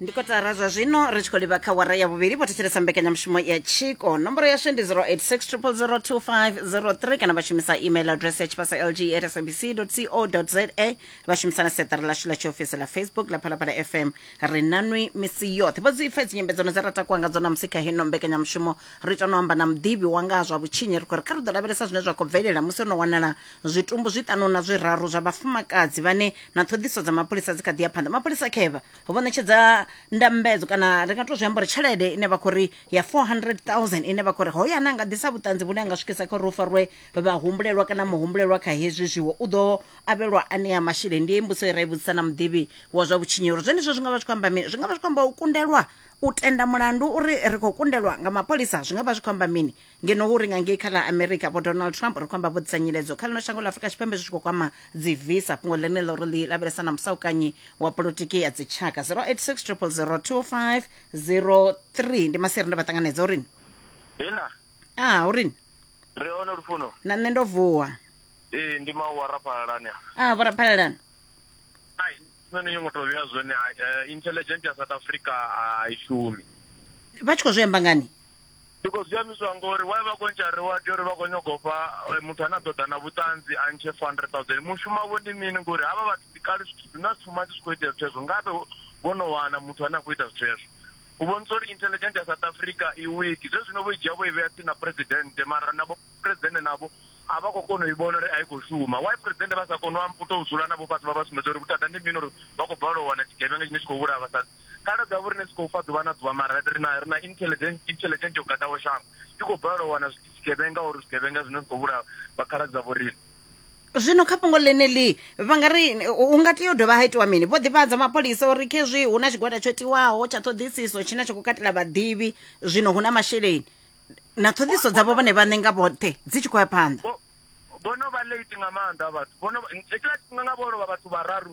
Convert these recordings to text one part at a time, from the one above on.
ndi kotara zwa zwino ri tshi khou livha kha wara ya vhuvhili vho thetshelesa mbekanyamushumo ya tshiko nomboro yashu ndi 0860002503 kana vha shumisa email address ya tshipasa lg at sabc co za vha shumisa na seṱari lashu ḽa tshiofisi ḽa facebook ḽa phalaphala fm ri nanwi misi yoṱhe vho dzi ipfa dzinyambedzano dza ra takuwa nga dzo namusi kha hino mbekanyamushumo ri ita no amba na muḓivhi wanga ha zwa vhutshinyi ri khou ri kha ri ḓo lavhelesa zwine zwa khou bvelela musi ono wanala Zwitumbu zwiṱanu na zwiraru zwa vhafumakadzi vhane na ṱhoḓiso dza mapholisa dzi kha ḓi ya phanḓa mapholisa khevha vho ṋetshedza ndambedzo kana ri nga to zwi amba uri tshelede ine vha khou ri ya 400000 ine vha khou ri hoyo ane a nga ḓisa vhuṱanzi vhune a nga swikisa kha uri hu farwe vhahumbulelwa kana muhumbulelwa kha hezwi zwiwo u ḓo avhelwa anea masheleni ndi ye mbuso i ra i vhudzisa na muḓivhi wa zwa vhutshinyelo zwenezwo zwi nga vha zwi khou amba mini zwi nga vha zwi khou amba u kundelwa u tenda mulandu uri ri khou kundelwa nga mapholisa zwi nga vha zwi khou amba mini ngeno hu ri nga ngei kha ḽa america vho donald trump ri khou amba vho ḓisa nyiledzo kha ḽino shango ḽa afurika tshipembe zwi tshi khou kwama dzi visa fhungo ḽene ḽo ri ḽi lavhelesa na musaukanyi wa polotiki ya dzitshaka 0860002503 ndi masiri nda vha ṱanganedza uri Hina, a uri ri hone lufuno. na nṋe ndo vuwa Ee, ndi mau wa raphalalani. a vho raphalelana Ai, nṋe ni ngo to vheya zwone. Ai, eh, intelligent ya South Africa a i shumi. vha tshi khou zwi amba ngani Ndi khou zwi ambiswa ngori why vha khou ntsha ri wa tea uri vha khou nyaga u fha muthu ane a ḓo ḓa na vhuṱanzi a ntshe 400000 mushumo wavho ndi mini ngori havha vhathu ndi kale zwithu zwi na tshuma tshi khou itea zwithu hezwo ngavhe vho no wana muthu ane a khou ita zwithu hezwo u vhonisa uri intelligent ya South Africa i wiki zwe zwino vho i dzhia vho i vhea tsini na president mara navho president navho a vha khou kona u i vhona uri a i khou shuma why president vha sa koni u tou dzula navho fhasi vha vha sumbedza uri vhuthada ndi mini uri vha khou balelwa u wana tshigevhenga tshine tshi khou vhulaya vhasadzi Kale ḓo ya vho riṋe zwi khou fa ḓuvha na ḓuvha mara ri na ri na intelligence intelligence yo gadaho shango. I khou balelwa u wana zwigevhenga uri zwigevhenga zwine zwi khou vhulaha vha khaladzi dza vho riṋe. Zwino kha fhungo ḽeneḽi vha nga ri hu nga tea u dovha ha itiwa mini? Vho ḓivhadza mapholisa uri khezwi hu na tshigwada tsho tiwaho tsha ṱhoḓisiso tshine tsha khou katela vhaḓivhi zwino hu na masheleni na ṱhoḓisiso dzavho vhone vhaṋe nga vhoṱhe dzi tshi khou ya phanḓa. Vho no vha late nga maanḓa vhathu. Vho no vha hetshiḽa tshifhinga nga vho lovha vhathu vhararu.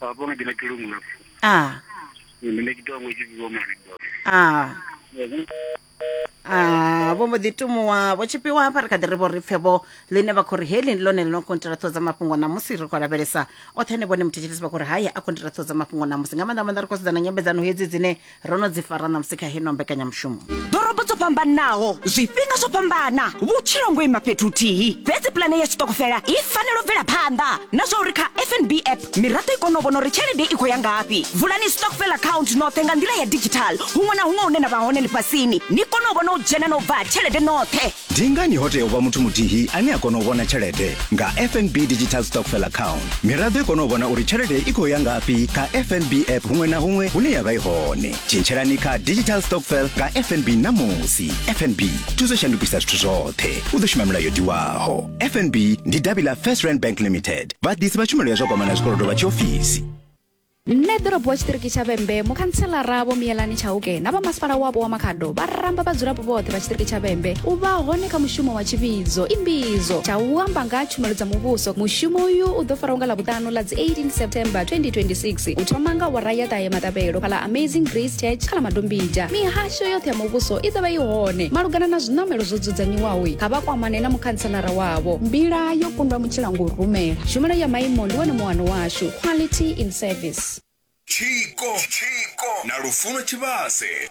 Baba nga dina ke lungwe lapho. Ah. Nne ne ke tongwe ke go mari baba. Ah. Ah, vho mbo ḓi tumuwa vho tshipiwa hafha ri kha ḓi ri vho ri pfe vho ḽine vha khou ri heli ndi ḽone ḽi no kontira ṱhoho dza mafhungo ṋamusi ri khou lavhelesa oṱhe ne vhone muthetshethisi vha khou ri haye a kontira ṱhoho dza mafhungo ṋamusi nga maanḓa maanḓa ri khou sedzana nyambedzano hedzi dzine ro no dzi fara ṋamusi kha heno mbekanyamushumo ḓorobo dzo fhambanaho zwifhinga zwo fhambana vhutshilo ngo ima fhethu huthihi fhedzi pulane ya tshiṱokofela i fanela u bvela phanḓa na zwa uri kha fnb app miraḓo i kone u vhona uri tshelede i khou ya ngafhi vulani stockfel account noṱhe nga nḓila ya digital huṅwe na huṅwe hune na vha hone ḽifhasini ni kone u vhona u dzhena na u bva ha tshelede noṱhe Ndi ngani ho tea u vha muthu muthihi ane a kona u vhona tshelede nga FNB Digital Stockfell Account? Miraḓo i kona u vhona uri tshelede i khou ya ngafhi kha FNB app huṅwe na huṅwe hune ya vha i hone. Tshintshelani kha Digital Stockfell nga FNB ṋamusi. FNB thuso shandukisa zwithu zwoṱhe. U ḓo shuma milayo tiwaho. FNB ndi davhi ḽa First Rand Bank Limited. Vhaḓisi vha tshumelo ya zwa kwamana zwikolodo vha tshiofisi. Nṋe ḓorobo tshiṱiriki tsha Vhembe, mukhantshelara Vho Miyelani Chauke na vha masipala wapo wa Makhado vha ramba vhadzulapo vhoṱhe vha tshiṱiriki tsha Vhembe u vha hone kha mushumo wa tshivhidzo imbidzo tsha u amba nga ha tshumelo dza muvhuso. Mushumo uyu u ḓo faraho nga Ḽavhuṱanu ḽa dzi 18 September 2026 u thoma nga awara ya ṱahe maṱavhelo fhaḽa Amazing Grace Church kha ḽa Madombija. Mihasho yoṱhe ya muvhuso i ḓo vha i hone. Malugana na zwiṋamelo zwo dzudzanyiwaho, kha vha kwamane na mukhantshelara wavho. Mbila yo kundwa mutshila ngo rumela. Tshumelo ya maimo ndi wone muano washu. quality in service tshiko na lufuno tshivhase